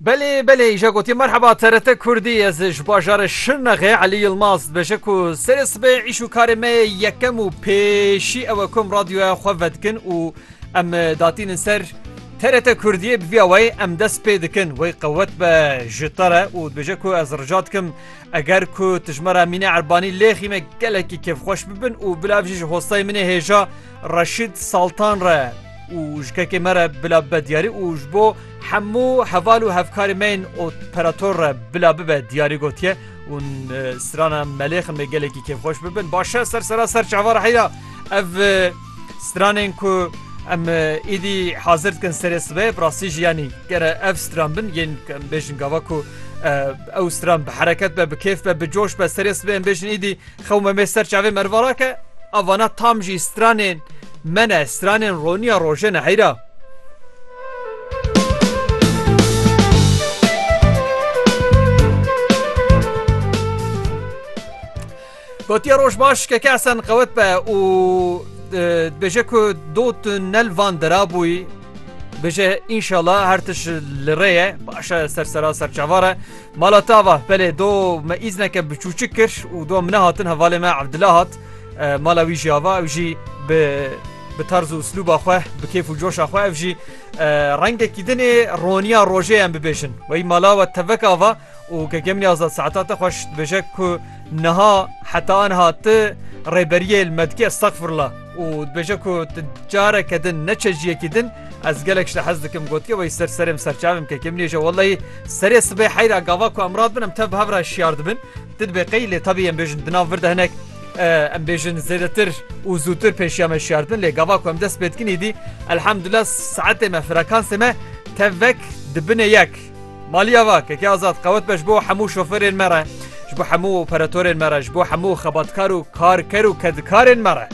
Belê belê îja gotî merheba TRT Kurdî ez ji bajarê Şirnexê Elî Yilmaz dibêje ku serê sibê îş û karê me yê yekem û pêşî ew e ku em radyoya xwe vedikin û em datînin ser TRT Kurdiyê bi vîya weyê em dest pê dikin wê qewet be ji te re û dibêje ku ez rica dikim eger ku tu ji me re Mîne Erbanî lêxîme gelekî kêfxweş bibin û bila jî ji hostayê min ê hêja Reşîd Saltan re û jikekê me re bila bibe diyarî û ji bo hemû heval û hevkarê me yên operator re bila bibe diyarî gotiye û strana Melêxin me gelekî kêfxweş bibin. Başe ser sera ser çava re heyra ev stranên ku em îdî hazir dikin serê sibê bi rastî jî yanî gere ev stran bin yên em bêjin gava ku ew stran bi hereket be bi kêf be bi coş be serê sibê em bêjin îdî Xewme me ser çavê mervala ke a vana tam jî stranên me ne, stranên roniya roje ne heyra. Gotiye roj baş ke kesen qewet be û dibêje ku dot nel van derabûyî bêje înşala her tiş li rê ye başe sersera serçavare Mala tava, belê do me îzneke bi çûçik kir û do min nehatin hevalê me Evdila hat mala wî jî ava ew jî bi bi tarz û slûba xwe bi kêf û coşa xwe ev jî rengekî dinê roniya rojê em bibêjin wey mala we tevek ava û gegemnî azad saeta te xweş dibêje ku niha heta anha ti rêberiyê li me dikî estexfirla û dibêje ku tu careke din ne çejiyekî din ez gelek ji te hez dikim gotiye wey ser serê min serçavê min kekê min nêje welleyî serê sibê heyra gava ku em radibin em tev bi hev re şiyar dibin tu dibê qey lê tevî em bêjin di nav vir de hinek em bêjin zêdetir û zûtir pêşiya me şiyar dibin lê gava ku em dest pê dikin îdî elhemdulillah saetê me frekansê me tevek dibinê yek Maliya va, Keke Azad, qewet be ji bo hemû şoferên me re, ji bo hemû operatorên me re, ji bo hemû xebatkar û karker û kedikarên me re.